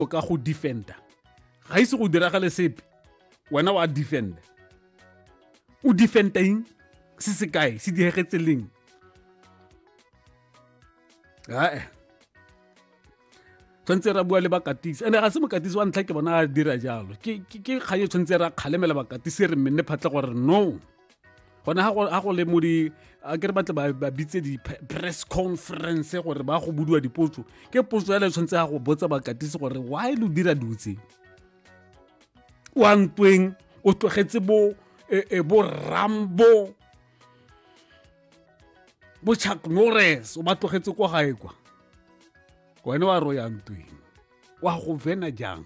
o ka go defenda ga ise go diragale sepe wena wa defenda o defendeng se se kae se diegetse leng ae tshwanetse ra bua le bakatisi ande ga se mokatisi wa ntlha ke bona a dira jalo ke kgang e tshwanetse ra kgalemela bakatisi re mmenne phatlha gore no gone ga go le mo di a ke re batle ba bitse di-press conference gore ba go budiwa dipotso ke potso ya le tshwanetse ya go botsa bakatisi gore why lo dira dutse o a ntweng o tlogetse bo e, e, bo rambo bo chuck norris o ba tlogetse kwa gae kwa wena wa ro ya ntweng wa go vena jang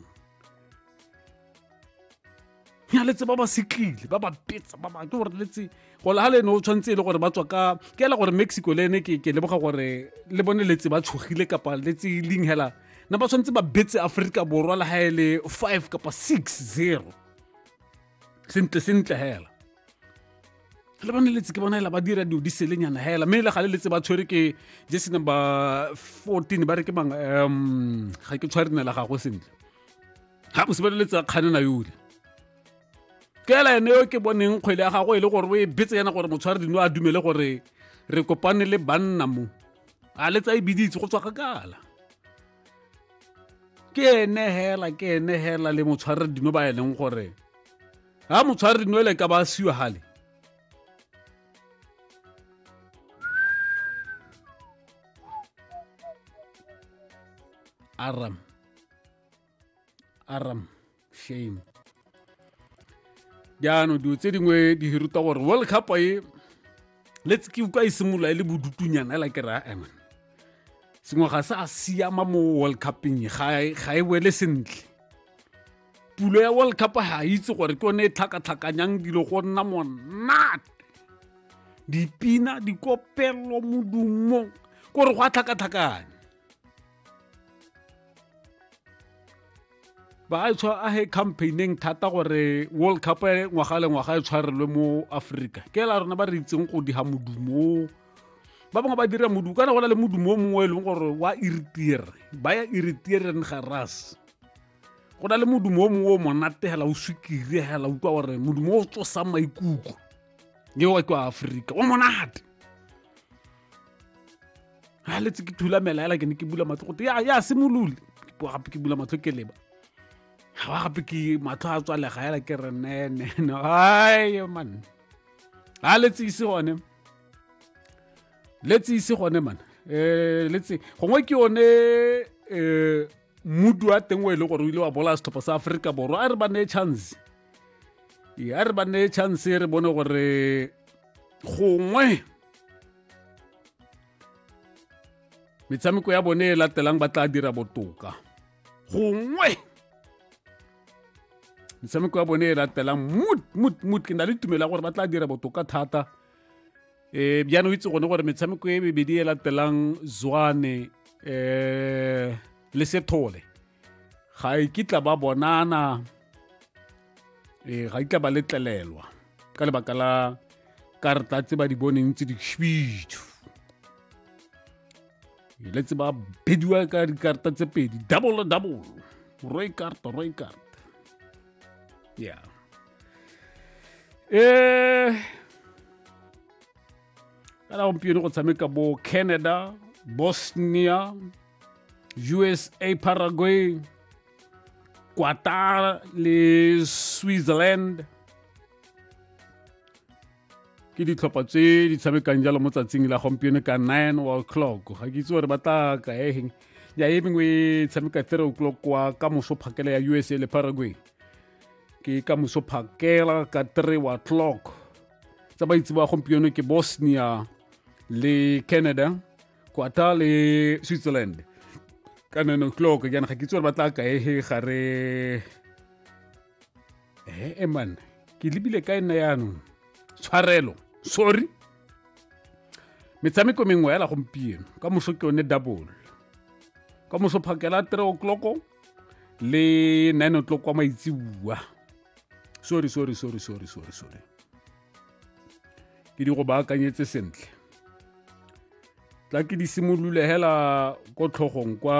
ya letse ba ba setlile ba ba petsa ba ba ke gore letse go le ha le ne o tshwanetse e le gore ba tswa ka ke ela gore mexico le ene ke ke leboga gore le bone letse ba tshogile kapa letse e leng hela na ba tshwanetse ba betse aforika borwa le ha e le five kapa six zero sentle sentle hela le bone letse ke bona ela ba dira dilo di selenyana hela mme le gale letse ba tshwere ke jesse number fourteen ba re ke mang um ga ke tshware nela gago sentle ga bose ba leletsa kganena yole kela ene yo ke boneng kgwele ya gago e le gore o e betse yana gore motshware dino a dumele gore re kopane le banna mo a letsa e biditse go tswa kgakala ke ene hela ke ene hela le motshware dino ba e leng gore ga motshware dino ele ka ba siwa gale aram aram shame jaanong dilo tse dingwe di ruta gore world cup e let's ke utlwa e simolola e le bodutunyana ela ke raya eman sengwe ga se a siama mo world cupeng e, ga e wele sentle pulo ya world cup ga itse gore ke yone e tlhakatlhakanyang dilo go nna monate dipina dikopelo modumo kore go a tlhakatlhakanya ba a tshwa a he campaigning thata gore world cup e ngwaga le ngwaga e tshwarelwe mo africa ke la rona ba re itseng go diga modumo ba bangwe ba dira modumo kana go na le modumo o mongwe e leng gore wa iritiere ba ya iritieren garas go na le modumo o mongwe o monate hela o swikiri hela utlwa gore modumo o tsosang maikutlo eo ke wa aforika o monate a letse ke thulamela hela ke ne ke bula matlho gote ya simolole gape ke bula matlho ke leba ga wa gape ke matlho a tswalega hela ke re nene ai man a letse ise gone letse ise gone man um letse gongwe ke yone um mudu wa teng o e le gore o ile wa bola setlhopha sa aforika borwa a re ba neye chance a re ba neye chance re bone gore gongwe metshameko ya bone e latelang ba tla dira botoka gongwe metshameko ya bone e latelang mut mut mut ke na le tumelo ya gore ba tla dira botoka thata um jaanong itse gone gore metshameko e mebedi e latelang zwane um le sethole ga e kitla ba bonana ee ga itla ba letlelelwa ka lebaka la karta tse ba di boneng tse dikšhwitšhu ile tse ba bediwa ka dikarta tse pedi double double roy karta roy karta yeah eh kana gompieno go tshameka bo canada bosnia usa paraguay Qatar le Switzerland ke ditlhopha tse di tshamekang jalo mo tsatsing la gompieno ka 9 o clock ga ke itse gore ba tla ka eng ya e mengwe e tshameka 3 o'clock kwa ka moso phakela ya usa le paraguay ke ka moso phakela ka 3 wa clock tsa ba itse ba gompieno ke bosnia le canada kwata le switzerland ka nine o'clock jaana ga ke itse gore ba tla kae he gare he eman ke lebile ka nna yaanong tshwarelo sorry metshameko mengwe yala gompieno ka moso ke yone double ka moso phakela three o'clock le nine o'clock kwa maitsibua sorry sorry sorry sorry sorry sorry ke di go baakanyetse sentle tla ke di simolole hela ko tlhogong kwa